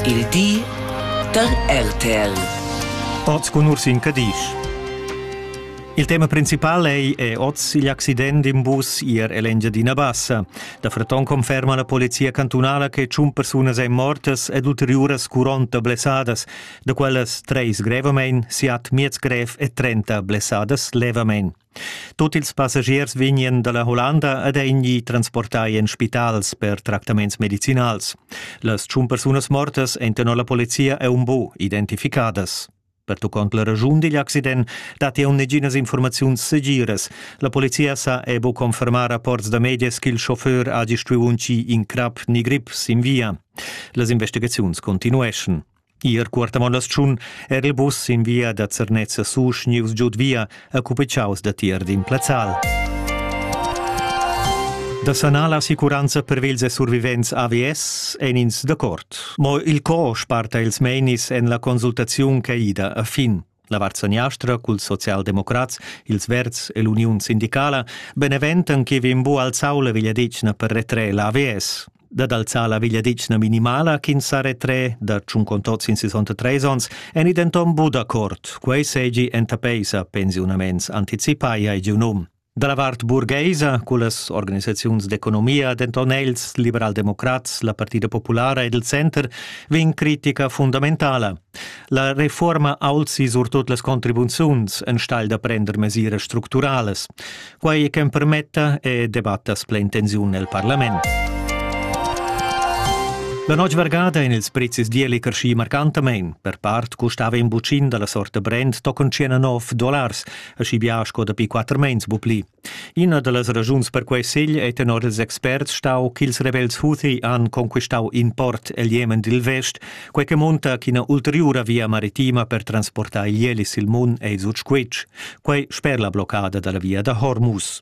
Il di da RTL. Oz cun Ursin Cadisch. Il tema principal ei è oz igl accident in bus ier ell'Engiadina Bassa. Da Freton conferma la polizia cantunala che tschun persunas ein mortas ed ulteriuras curonta blessadas, da quellas treis grevamein, siat miez grev e trenta blessadas levamein. Tut ils passagiers vegnien dalla Hollanda ed ein gli transportai en spitals per tractaments medicinals. Las tschun persunas mortas ein tenor la polizia e un bu identificadas. Pertuccont la regiun digl accident dat jau neginas informaziuns segiras. La polizia sa e bu confermar rapports da medias ch'il chauffeur ha gistuiu un ci in crap ni grip sin via. Las investigaziuns continueschan. Ir cuortavon la schun era il bus sin via da Zernez a Susch nius giud via a cupicaus da tier d'in plazzal. Da sanar la assicuranza per vils e survivents AVS en ins d'accord. Mo il co sparta ils meinis en la consultaziun che ida a fin. La vart seniastra culs socialdemocrats, ils Verds e l'Uniun sindicala beneventan che vegn bu alzau la vegliadetgna per retrer la AVS dad alzar la vegliadetgna minimala ch'ins sa retrer da tschuncon tots in 63 ons en denton bu d'accord, quei seigi enta peisa pensiunaments anticipai ai giu num. Da la vart burgaisa, cullas organisaziuns d'economia, denton els, liberaldemocrats, la Partida Populara ed il Center, vegn critica fundamentala. La reforma alzi surtut las contribuziuns enstagl da prender mesiras structurales. Quai che permetta e debattas plein tensiun nel Parlament. La notg vargada in ils prezis dieli carschi marcantamein. Per part custava in bucin dalla sorta brand tochen 19 dollars, aschi bia sco dapi quatter meins bu pli. Ina dallas raschuns per quei segl ei tenor ils experts stau ch'ils rebels Houthi han conquistau in port el Jemen dil vest, quei che monta ch'ina ulteriura via maritima per transportar igl sil Mun ei sut squitsch. Quei sper la bloccada dalla via da Hormuz.